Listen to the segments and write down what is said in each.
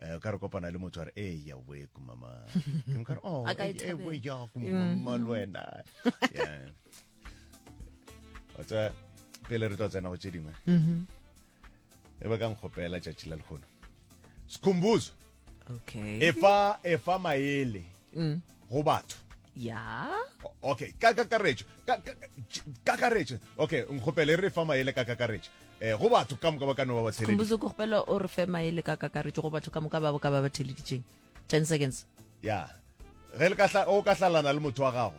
Eh, o ka re kopana le motho a re e eh, ya we kumama ke ka re oh e eh, eh, we ya kumama le wena yeah o tsa pele re tla tsena go tse dingwe mhm. e ba ka nkgopela tšatši la lehono sikhumbuzo okay efa efa maele mm. go batho ya okay ka kakaretšo ka kakaretšo okay nkgopele re fa maele ka kakaretšo eh go batho ka moka ba ka no ba ba theleditše khumbuzo go gopela o re fe maele ka kakaretšo go batho ka moka ba ka ba ba theleditšeng 10 seconds ya ge le ka hla o ka hlalana le motho wa gago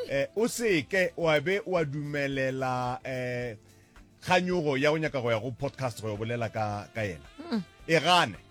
eh o seke wa be wa dumelela eh kganyogo ya go nyaka go ya go podcast go bolela ka ka yena hmm. e gane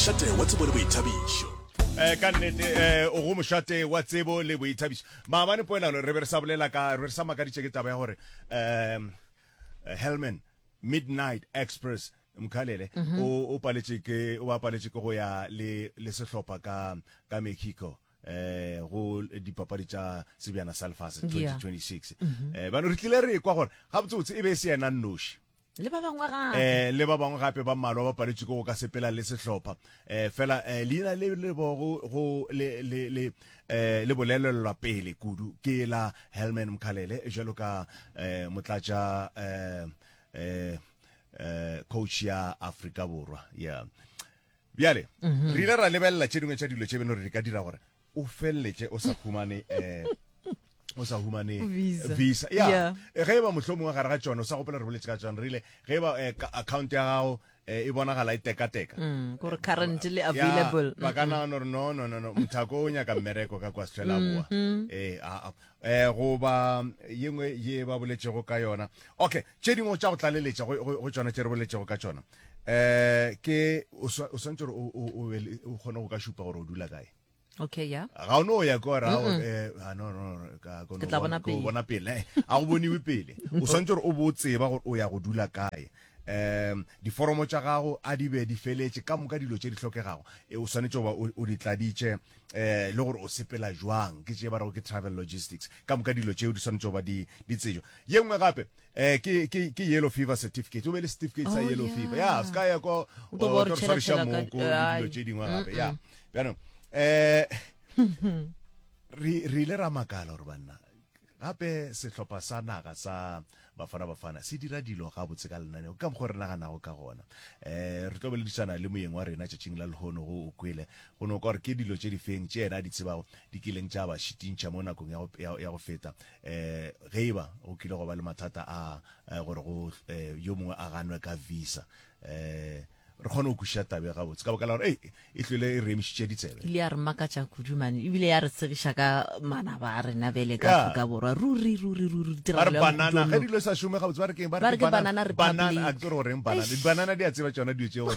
mošate wa tsebo le boithabišo eh ka nnete eh o go mošate wa tsebo le boithabišo maabane poelano re be re sa bolela ka re sa makaditše ke taba ya gore um helman midnight express mkhalele mhm. o paletše ke o paletše ke go ya le le sehlopha ka ka mexico eh go dipapadi tša sebjana sa lefase 2026 mhm. eh bano re tlile re kwa gore ga botsotsi e be e se yena nnoši le ba bangwe gape eh, le ba bangwe gape ba mmalwa ba paletšwe ke go ka sepela le sehlopha eh, fela eh, leina le le bogo go le le le eh, le bolelelwa pele kudu ke la Helman Mkhalele jalo ka eh, motlatša eh, eh, eh, coach ya Afrika Borwa yeah bjale mm -hmm. re ile ra lebelela tše dingwe tša dilo tše beno re di ka dira gore o feleletše o sa humane um o sa humane visa, visa. ya yeah. Eh, ge e ba mohlomong wa gare ga tšone o sa gopela re boletse ka tšone re ile ge e ba eh, account ya gago eh, e bonagala e tekateka mm, gore currently available ba ka nagana gore no no no no mothako o nyaka mmereko ka kwa sefela boa mm-hmm. ee aa um goba yengwe ye ba boletšego ka yona okay tše dingwe tša go tlaleletša go tšona tše re boletšego ka tšona eh ke o swantse gore o o kgone go ka šupa gore o dula kae okay ya ga o no ya kwa ra o eh ah, no no ka go bona pele bona pele eh, a go boniwe pele o swantse gore o bo tseba gore o ya go dula kae um diforomo tša gago a di be di feletše ka moka dilo tše di hlokegago e, o swanetše goba o di tladitše um eh, le gore o sepela jwang ke tše ba rego ke travel logistics ka moka dilo tšeo di swanetše goba di tsejo ye nngwe gape Eh, ke, ke, ke yellow fever certificate. O be le certificate sa oh, yellow fever. Ya, se ka ya ko, o tlo re tshwariša moko, dilo tše dingwe gape. Ya, bjanong, eh, re ile ra makala gore banna gape sehlopha sa naga sa bafana bafana se dira dilo ga botse ka lenaneo ka mokgwa re naganago ka gona um re tlo boledisana le moyeng wa rena tšatšing la lehono go o kwele go no ka gore ke dilo tše difeng tše yena di tsebago di kileng tša ba šitintšha mo nakong ya go feta um ge e ba go kile go ba le mathata a eh, gore go eh, yo mongwe a ganwe ka visa um re kgone go kwešiša tabe ga botse ka baka la gore ei e tlwele e re emišitše ditsebe ile ya re makatša kudu mane ebile ya re tsegiša ka manaba a rena bele ka Yeah. aforika borwa ruri ruri ruri ba re tiragalo ya banana ge Modimo. dilo sa šome ga botse ba re keng Ba re ke banana republic. a ke gore goreng banana Eish. dibanana di a tseba tšona dilo tše gore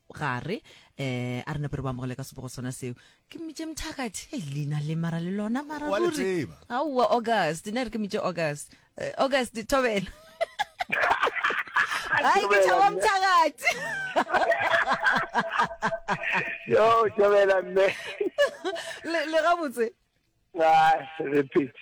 gare um a re nape re bo amogele ka sebogo sona seo ke mmitše mthakathi e leina le mara le lona mara Wa le ruri tseba. aowa august ne re ke mmitše august Eh, august thobela ai ke thaba mthakathi yo tšobela mme le le gabotse Ai, re phete.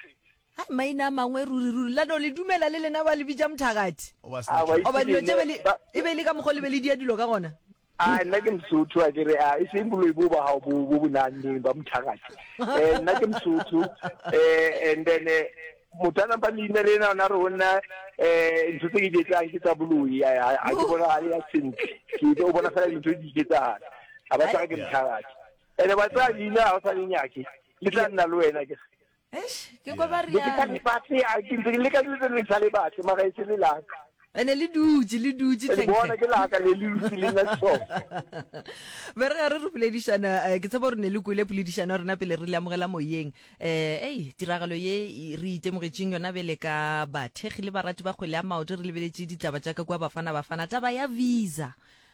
Hai, maina a mangwe ruri ruri. La no le dumela le lena ba le bitša mothagathi. O ba sna tšhogo. Oba dilo tše be le, e be le ka mokgwa le be le dia dilo ka gona. A nna ke mosotho a kere a e seng boloi bo ba hao bo bo bonane ba mothagathi eh nna ke mosotho eh and then eh, motho a nampa leina le ena ona re ho nna eh ntho tse ke di etsang ke tsa boloi a ke bona hale ya sentle ke o bona fela dintho di iketsahala ha ba tsaka ke mothagathi ene ba tsaya leina ha o sa le nyake ke tla nna le wena ke ke kwa ba riana leka dilo tse le sa le batle mara e se le laka ene le dutse le dutse bona ke laka le le dutse le nna so be re re re boledišana eh, ke tsebo re ne le kwele poledišana rena pele re le amogela moyeng eh ei tiragalo ye re itemogetseng yona bele ka bathegi le barati ba kgwele ya maoto re lebeletše ditaba tša ka kwa bafana bafana taba ya visa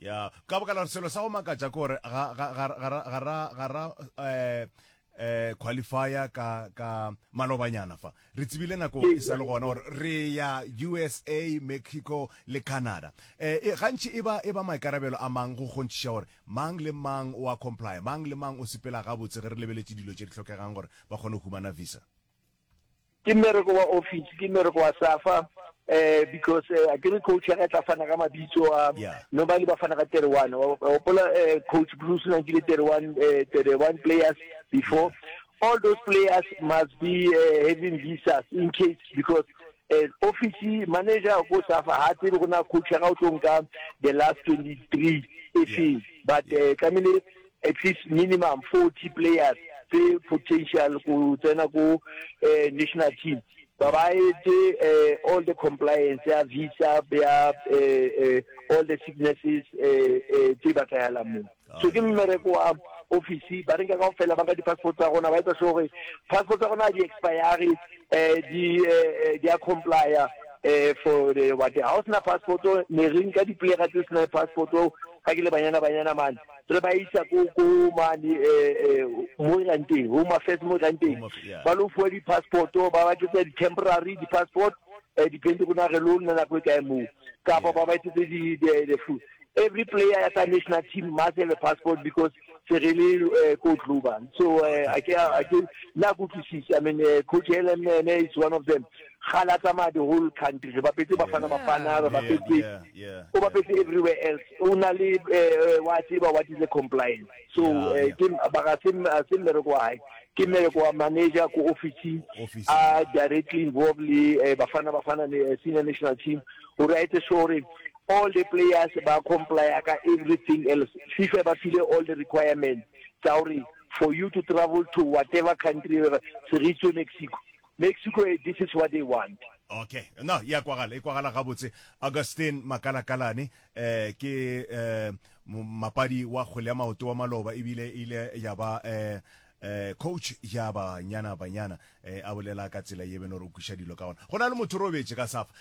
ya ka boka la gore selo sa go makatša ke gore ga ga ga ga ra- ga ra ga ra eh eh qualifier ka ka malobanyana fa re tsebile nako e sa le gona gore re ya usa mexico le canada eh e- gantši e ba e ba maikarabelo a mang go kgontšhiša gore mang le mang o a comply mang le mang o sepela gabotse ge re lebeletše dilo tše di tlhokegang gore ba kgone go humana visa Ke mmereko wa office, ke mmereko wa SAFA, eh, because eh, akere coach ya ka tla fana ka mabitso a, yeah. normally ba fana ka 31, wa gopola eh, coach Bruce na nkile 31, eh, 31 players before, yeah. all those players must be eh, having visas in case, because eh, office manager ko safa ha tsebe go na coach ga o tlo nka the last 23 e feng but eh, tlamehile at least minimum 40 players tse potential go tsena ko national team ba ba etse all the compliance ya visa ya all the sicknesses tse ba tlayalang mo so ke mmereko wa office ba re ka go fela ba ka di-passport tsa gona ba etsa sure gore passport tsa gona di expire di di a complya for the what ha o sena passport ne re nka di-player tse sena passport ka ke le banyana banyana mane re ba isa ko ko mane um mo e rang teng home affairs mo e rang teng ba lo fuwa di-passport ba ba tletsa di-temporary di-passport um depende go nage lo nna nako e kae moo kapa ba ba etsetse the food every player ya ka national team must have a passport because se re le eh, ko global so eh, a ke a ke na go utlwisisa i mean eh, coach Helen ene is one of them ga la tsamaya the whole country re bapetse bafana bafana re bapetse o bapetse everywhere else o na le eh, wa tseba what is a compliance so eh, ke baka se se mmereko wa hae ke mmereko wa manager ko office a directly involved le eh, bafana bafana le eh, senior national team o re a etse sure all the players ba complya ka everything else fifa ba file all the requirements tsa gore for you to travel to whatever country se re tswe mexico Mexico e this is what they want. Okay, no, ya kwagala, e kwagala gabotse. Augustine Makalakalane, eh, ke eh, mapadi wa kgwele ya maoto wa maloba, ebile ile ya ba eh, eh, coach ya banyana banyana eh, a bolela ka tsela ye beno re kwiša dilo ka ona go na le motho robetse ka safa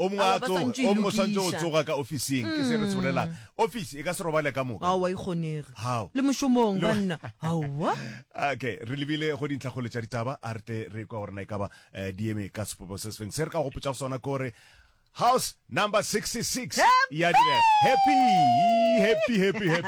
O mongwe a tsoge, o mongwe o swanetše go tsoga ka ofising, ke se re se bolelang. Ofisi e ka se robale ka moka. Aowa, e kgonege. Hao. Le mošomong, banna. Aowa. Okay, re lebile go dintlhakgolo tša ditaba, a re tle re kwa gore na e ka ba di eme ka sepopo se se feng. Se re ka go gopotšago sona ke gore House number 66 ya direga. Happy! Happy, happy, happy.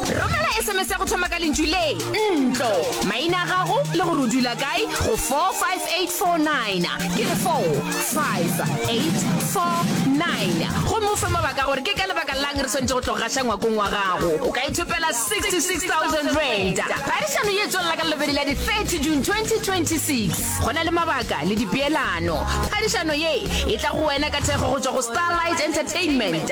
romela sms ya go thoma ka lentšu le ntlo maina a gago le gore o dula kae go 45849 ke re 45849 gomme o fe mabaka gore ke ka lebaka lang re swanetse go tlogaša ngwakong wa gago o ka ithopela 66000 rand phadišano ye tswelela ka lobedi la di-30 june 2026 go na le mabaka le dipeelano phadišano ye e tla go wena ka thekgo go tswa go starlight entertainment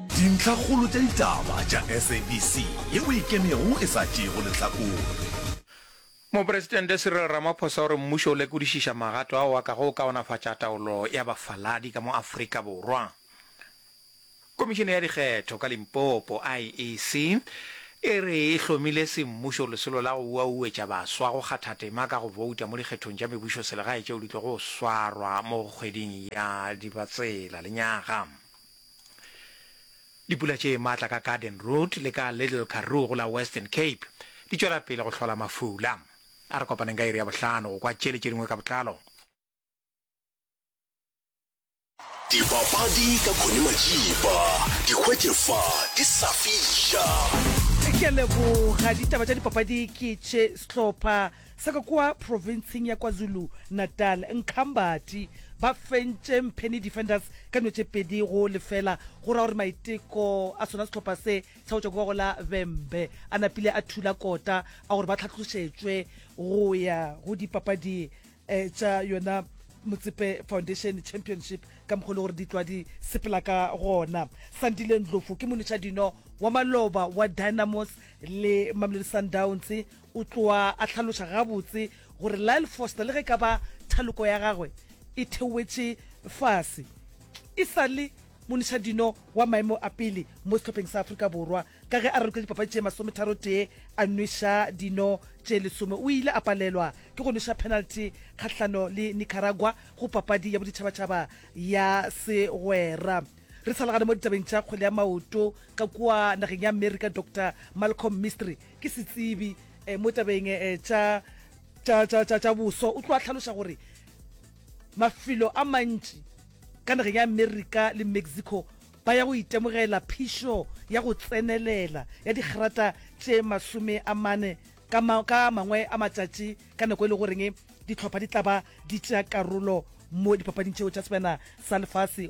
Dintlhakgolo tša ditaba tša SABC ye o e kenego e sa tšeego lehlakore. Mopresidente Cyril Ramaphosa o re mmušo o lekodišiša magato ao a kago kaonafatša taolo ya bafaladi ka mo Afrika Borwa. Komišene ya dikgetho ka Limpopo, IEC, e re e hlomile semmušo lesolo la go uauetša baswa go kgatha tema ka go bouta mo dikgethong tša mebušoselegae tšeo di tlogo swarwa mo kgweding ya Dibatsela lenyaga. Dipula tše matla ka Garden Route le ka Little Karoo go la Western Cape di tšwela pele go hlola mafula. A re kopaneng ka iri ya bohlano go kwa tšele tše dingwe ka botlalo. Dipapadi ka Connie Majiba, di hwetše fa di sa fiša. Ke a leboga. Ditaba tša dipapadi ke tše sehlopha. sa ka kua profenseng ya KwaZulu-Natal, Nkhambati ba fentše Mpheni Defenders ka dino tše pedi go lefela, go ra gore maiteko a sona sehlopha se sa go tšwa kua go la Vhembe a napile a thula kota a gore ba tlhatlošetšwe go ya go dipapadi eh, tša yona Motsepe Foundation Championship ka mokgwa le gore di tlwa di sepela ka gona. Sandile Ndlovu ke monetšadino wa maloba wa Dynamos le Mamelodi Sundowns O tloga a hlaloša gabotse gore Lyle Foster, le ge e ka ba thaloko ya gagwe e theoetše fase e sa le monišadino wa maemo a pele mo sehlopheng sa Afrika Borwa, ka ge a ralokile dipapadi tše masometharotee a nweša dino tše lesome, o ile a palelwa ke go nweša penalty kgahlano le Nicaragua go papadi ya boditšhabatšhaba ya segwera. Re sa le gare mo ditabeng tša kgwele ya maoto, ka kua nageng ya Amerika, Doctor Malcolm Mistry, ke setsebi um mo tabeng um tša boso o tlo a tlhaloša gore mafelo a mantši ka nageng ya america le mexico ba ya go itemogela phišo ya go tsenelela ya digrata tše masome a mane ka mangwe a matšatši ka nako e le goreng ditlhopha di tla ba di tšea karolo mo dipapading tšeo tša sebjana sa lefase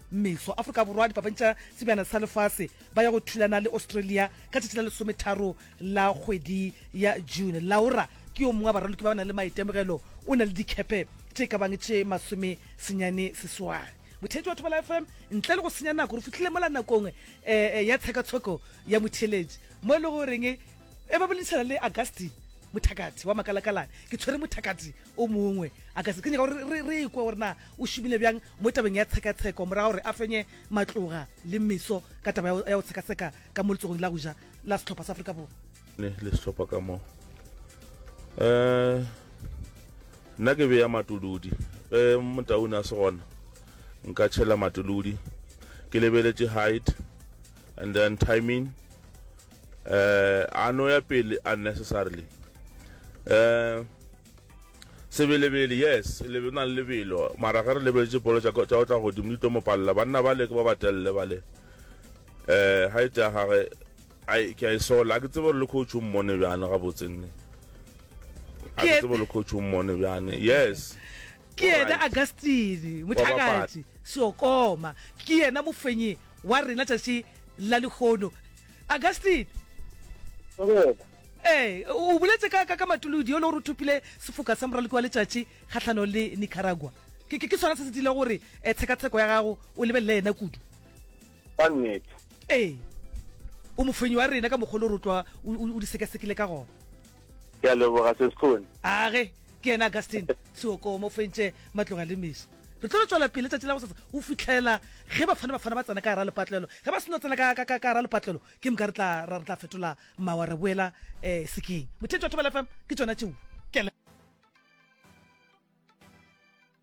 Meso Afrika Borwa dipapadi tša sebjana sa lefase ba ya go thulana le Australia ka tšatši la lesometharo la kgwedi ya June. Laura ke yo mongwe wa baraloki ba ba nang le maitemogelo, o na le dikhepe tše ka bang tše masome senyane seswai. Motheetši wa Thobela FM, ntle le go senya nako, re fihlile mola nakong eh, eh, ya tshekatsheko ya motheeletši mo e le goreng e ba boledišana le Augustine Mothakati wa Makalakalane. Ke tshwere Mothakati o mongwe a ka se kenya gore re re ikwe gore na o šomile bjang mo tabeng ya tshekatsheko morago gore a fenye matloga le meso ka taba ya go tshekatsheka ka mo letsogong la go ja la setlhopha sa aforika borwa ne le setlhopha ka mo um nna ke beya matolodi ge motaune a se gona nka tšhela matolodi ke lebeletše height and then timing uh, a no ya pele unnecessarily uh, sebelebele yes lebe na le lebelo mara ge re lebeletse polo tša go tla godimo di tlo mo palela banna ba le ke ba ba telele ba le um ga e tea gage ke a e sola a ke tsebe gore le coach o mmone bjane gabotsenne a ke tsebe le coach o mmone bjane yes ke ena agustine mothakati seokoma ke ena mofenyi wa rena tšatši la lehono augustine Dumela. ee o boletse ka ka ka matolodi yo le gore o thopile sefoka sa moraloki wa letšatši kgatlhanong le nicaragua ke ke- ke sona se se dile gore um tshekatsheko ya gago o lebelele yena kudu Ka nnete. ee o mofenyi wa rena ka mokgwa o le gore o tlwa o o- o di sekasekile ka gona ke a leboga se sekgone age ke yena augustin seokomo fentše matloga le meso re tlo re tswela pele letsatsi la go sasa o fitlhela ge bafana bafana ba tsena ka gara lepatlelo ge ba seno tsena ka gara lepatlelo ke moka re tla fetola mawa re boela um eh, sekeng mothetši wa thobela fm ke tsona tšeo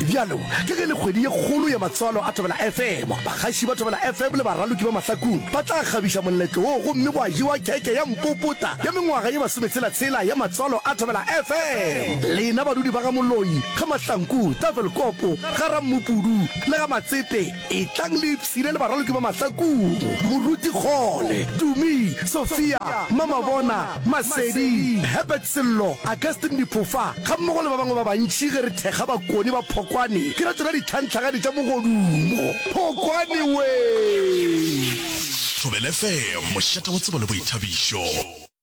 Bjalo ka ge le kgwedi ye kgolo ya matswalo a Thobela FM, bagaši ba Thobela FM le baraloki ba mahlakung ba tla kgabiša moletlo wo gomme gwa jewa khekhe ya mpopota ya mengwaga ye masometshela-tshela ya matswalo a Thobela FM. Lena badudi ba ga Moloi, ga Mahlanku, Tafelkopo, ga Rammopudu le ga Matsepe, Etlang le ipshine le baraloki ba Mahlakong, Moruti Kgole, Tumi, Sophia, Mamabona, Masedi, Herbert Sello, Augustine Diphofa gammogo le ba bangwe ba bantši ge re thekga bakoni ba Phokwane ke ra tšona ditlhanhlagadi tša mogodumo. Phokwane wee! Thobel FM, mošate wa tsebo le boithabišo.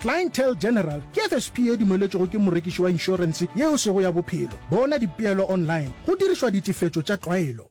Clientele General ke FSP e dumeletšwego ke morekiši wa inšorense yeo sego ya bophelo. Bona dipeelo online go dirišwa ditefetšo tša tlwaelo.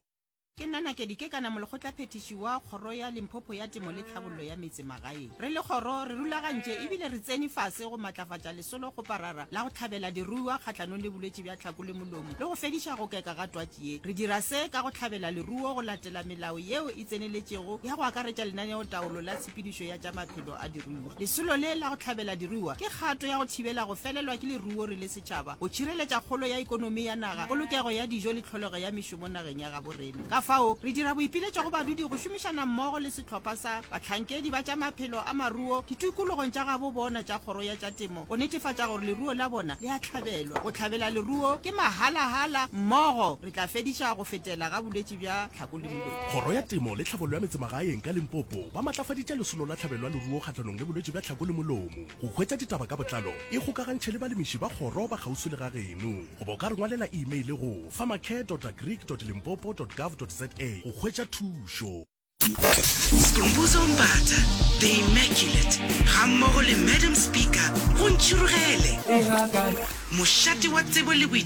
Ke nna Nakedi Kekana, molekgotlaphethiši wa Kgoro ya Limpopo ya Temo le Tlhabollo ya Meetse Magaeng. Re le kgoro re rulagantše e bile re tsene fase go matlafatša lesolo kgoparara la go hlabela diruiwa kgahlanong le bolwetši bja tlhako le molomo le go fediša go keka ga twatši ye. Re dira se ka go hlabela leruo go latela melao yeo e tseneletšego ya go akaretša lenaneotaolo la tshepedišo ya tša maphelo a diruiwa. Lesolo le la go hlabela diruiwa ke kgato ya go thibela go felelwa ke leruo re le setšhaba, go tšhireletša kgolo ya ekonomi ya naga, polokego ya dijo le tlholego ya mešomo nageng ya gabo rena. Ka fao, re dira boipiletšo go badudi go šomišana mmogo le sehlopha sa bahlankedi ba tša maphelo a maruo ditikologong tša gabo bona tša Kgoro ya tša Temo go netefatša gore leruo la bona le a hlabelwa. Go hlabela leruo ke mahala-hala, mmogo re tla fediša go fetela ga bolwetši bja. bja tlhako le bolwetši. Kgoro ya Temo le Tlhabollo ya Metsemagaeng ka Limpopo ba matlafaditše lesolo la tlhabelo ya leruo kgahlanong le bolwetši bja tlhako le molomo. Go hwetša ditaba ka botlalo, ikgokagantšhe le balemiši ba kgoro ba kgauswi le ga geno goba o ka re ngwalela imeile go, farmercare.agric.limpopo.gov.za, go hwetša thušo. Skhumbuzo Mbatha, The Immaculate, gammogo le Madam Speaker go ntšhirogele. Mošate wa tsebo le boitšhireletšo.